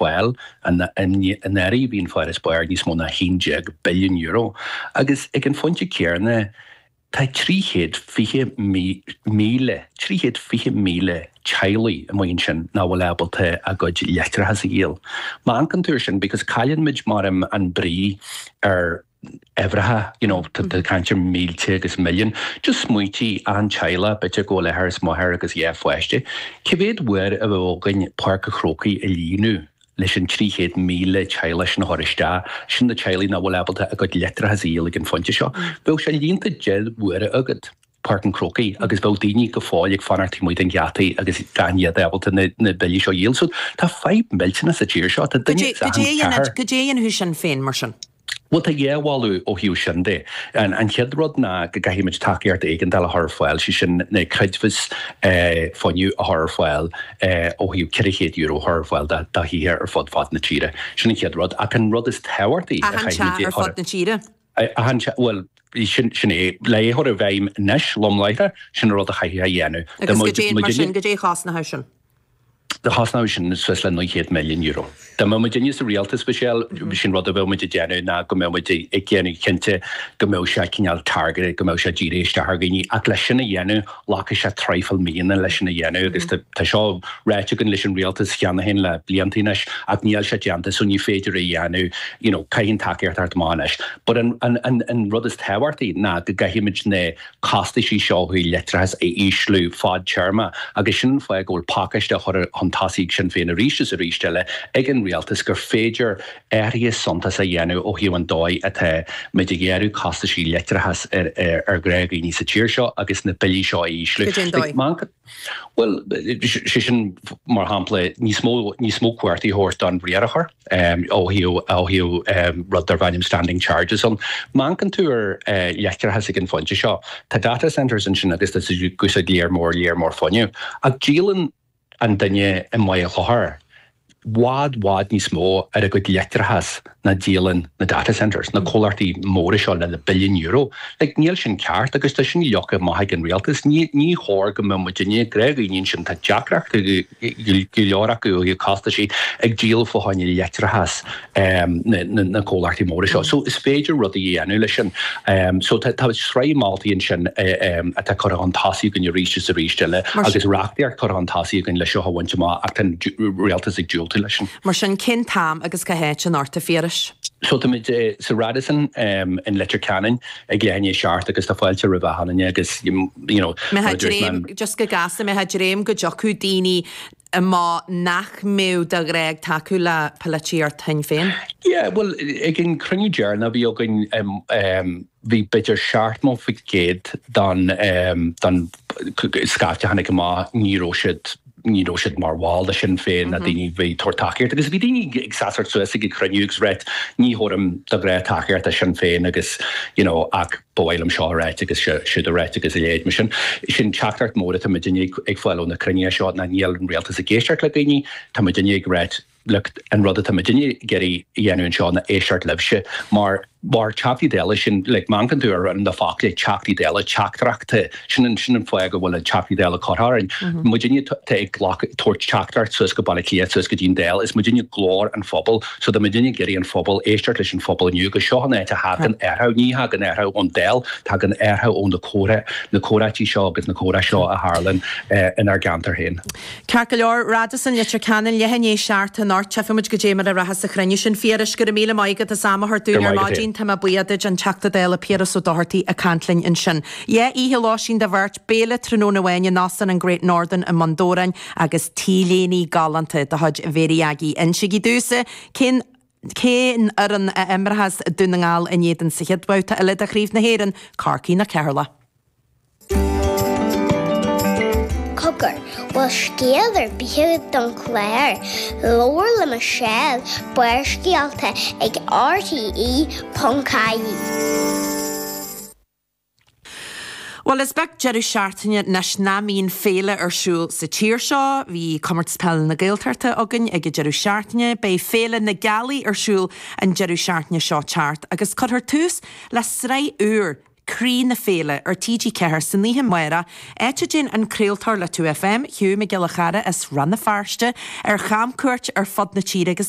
Bhuel. I ndáiríre, bhí an farasbarr níos mó ná €11 billiún agus ag an phointe céanna tá 320,000, trí chéad fiche míle, teaghlaigh amuigh ansin nach bhfuil ábalta a gcuid leictreachais a dhíol. Má amharcann tú ar sin because cailleann muid mar an brí ar. uimhreacha you know tá tá caint ar mílte agus milliúin just smaointigh achan teaghlach b'fhéidir go bhfuil athair is máthair agus dhá pháiste cé mhéad uair a bheadh againn Páirc an Chrócaigh a líonadh leis an 300,000 teaghlach sin a thabhair isteach sin na teaghlaigh nach bhfuil ábalta a gcuid leictreachas a dhíol ag an phointe seo bheadh sé líonta deich n-uaire agat Páirc an Chrócaigh agus bheadh daoine go fóill ag fanacht taobh amuigh de na geataí agus gan iad ábalta na na billí seo a dhíol so tá fadhb millteanach sa tír seo tá duine as achan ceathrar caidé caidé a dhéanfadh Sinn Féin mar sin? Bhuel, tá dhá mholadh ó thaobh sin de. An chéad rud ná go gcaithfimid tacaíocht éigeandáil a chur ar fáil, sé sin na creidmheas fuinnimh a chur ar fáil ó thaobh €400 a chur ar fáil do thithe ar fud fad na tíre. Sin an chéad rud. Ach an rud is tábhachtaí a Achan teach ar fud na tíre? Achan teach, bhuel, sin é. Le é a chur i bhfeidhm anois, lom láithreach, sin an rud a chaithfidh a dhéanamh. Agus caidé, mar sin, caidé a chosnódh sin? chosnódh sin suas le €900 milliún. Dá mbeadh muidinne sa rialtas, Michelle, sin rud a bheadh muid ag déanamh ná go mbeadh muid ag déanamh cinnte go mbeadh sé cineál targeted, go mbeadh sé dírithe isteach ar dhaoine ach leis sin a dhéanamh, ghlacfadh sé traidhfil míonna leis sin a dhéanamh agus tá tá seo ráite againn leis an rialtas cheana féin le blianta anois ach níl sé déanta so ní féidir é a dhéanamh, you know caithfidh an tacaíocht a theacht amach anois. But an an an rud is tábhachtaí ná go gcaithfidh muid na costaisí seo ó thaobh leictreachas a ísliú fadtéarma agus sin an fáth go bhfuil pacáiste curtha chun tosaigh ag Sinn Féin arís is arís eile ag an Rialtas gur féidir athruithe suntasach a dhéanamh ó thaobh an dóigh atá muid ag gearradh costaisí leictreachas ar ghnáthdhaoiní sa tír seo agus na billí seo a ísliú. Caidé an dóigh? Bhuel, sé sin, mar shampla, níos mó cumhachtaí a thabhairt don riarthóir ó thaobh rud darb ainm standing charges ann. Má amharcann tú ar leictreachas ag an phointe seo. Tá data centres ansin agus tá siad ag úsáid lear mór lear mór fuinnimh. Ach díolann an duine i Machaire Chlochair, bhfad bhfad níos mó ar a gcuid leictreachas ná díolann na data centres, na comhlachtaí móra seo lena billiúin euro. Like, níl sin ceart agus tá sin leagtha amach ag an rialtas. Ní ní chóir go mbeadh muidinne, gnáthdhaoine ansin, tá deacrachtaí go go go leor acu, costaisí, ag díol fá choinne leictreachas. na comhlachtaí móra seo. So is féidir rudaí a dhéanamh leis sin. So tá sraith moltaí ansin atá curtha chun tosaigh againn arís is arís eile agus reachtaíocht curtha chun tosaigh againn leis seo a bhaint amach ach tá an Rialtas ag diúltú leis sin. Mar sin, cén t-am agus cá háit anocht, a Phiarais? So táimid sa Radisson i Leitir Ceanainn ag leath i ndiaidh a 7 agus tá fáilte roimh achan duine agus, you know, Mbeifeá ag dréim, just go gasta, mbeifeá ag dréim go dtiocfadh daoine a mbó nach mbeadh de ghnáth ag tacú le polaitíocht Shinn Féin. Yeah, bhuel, ag an cruinniú deireanach a bhí againn, bhí b'fhéidir seachtó faoin gcéad don, don scaifte a tháinig amach, ní raibh siad, ní raibh siad mar bhall de Sinn Féin, na daoine a bhí ag tabhairt tacaíocht, agus bhí daoine ag seasamh suas ag an chruinniú agus ag ráit, ní thabharfainn de ghnáth tacaíocht do Sinn Féin agus, you know, ach. Ba mhaith liom seo a ráit agus siúd a ráit agus a leithéid mar sin. Sin teachtaireacht mhór atá muid uilig ag fáil ó na cruinnithe seo ná níl an Rialtas ag éisteacht le daoine, tá muid uilig ag ráit look, an rud atá muid uilig ag iarraidh a dhéanamh anseo ná éisteacht libhse mar, mar Theachtaí Dála, sin like, má amharcann tú ar na focla Teachtaí Dála, teachtaireachtaí. Sin an fáth go bhfuil Teachtaí Dála curtha orainn. Muidinne atá ag glacadh, ag tabhairt teachtaireacht suas go Baile Átha Cliath, suas go dtí'n Dáil. Is muidinne glór an phobail. So tá muidinne ag iarraidh an phobail, éisteacht leis an phobal inniu agus seo an áit a thagann athrú. Ní thagann athrú ón Dáil, tagann athrú ó na comhrá, na comhráití seo agus na comhrá seo a tharlaíonn inár gceantar féin. Ceart go leor, Radisson, Leitir Ceanainn, leath i ndiaidh a seacht anocht, tchífidh muid caidé a bheidh muid a ráit as sa chruinniú sin. Phiarais, go raibh míle maith agat as am a thabhairt dúinn ar maidin. Tá mé buíoch duit, an Teachta Dála Piaras Ó Dochartaigh ag caint linn ansin. Dhá oíche lóistín do bheirt, béile tráthnóna amháin in Óstán an Great Northern i mBun Dobhráin agus t-léinte galánta de chuid Mhary Aggie. Insigí domhsa cén fhoireann a imreas Dún na nGall in éadan sa chéad bhabhta eile de Chraobh na hÉireann, Corcaigh nó Ceatharlach. Cogar, bhfuil scéal ar bith agat don chlár? Labhair le Michelle, Barrscéalta ag RTÉ.ie. Bhuel, is beag deireadh seachtaine anois nach mbíonn féile ar siúl sa tír seo. Bhí Comórtas Peile na Gaeltachta againn ag an deireadh seachtaine. Beidh Féile na Gealaí ar siúl an deireadh seachtaine seo ag teacht agus cuirfear tús le sraith úr Croí na Féile ar TG4 san oíche amárach, áit a dtéann an craoltóir le 2FM, Hugh Mac Giolla Chearra as Rann na Feirste, ar chamchuairt ar fud na tíre agus é.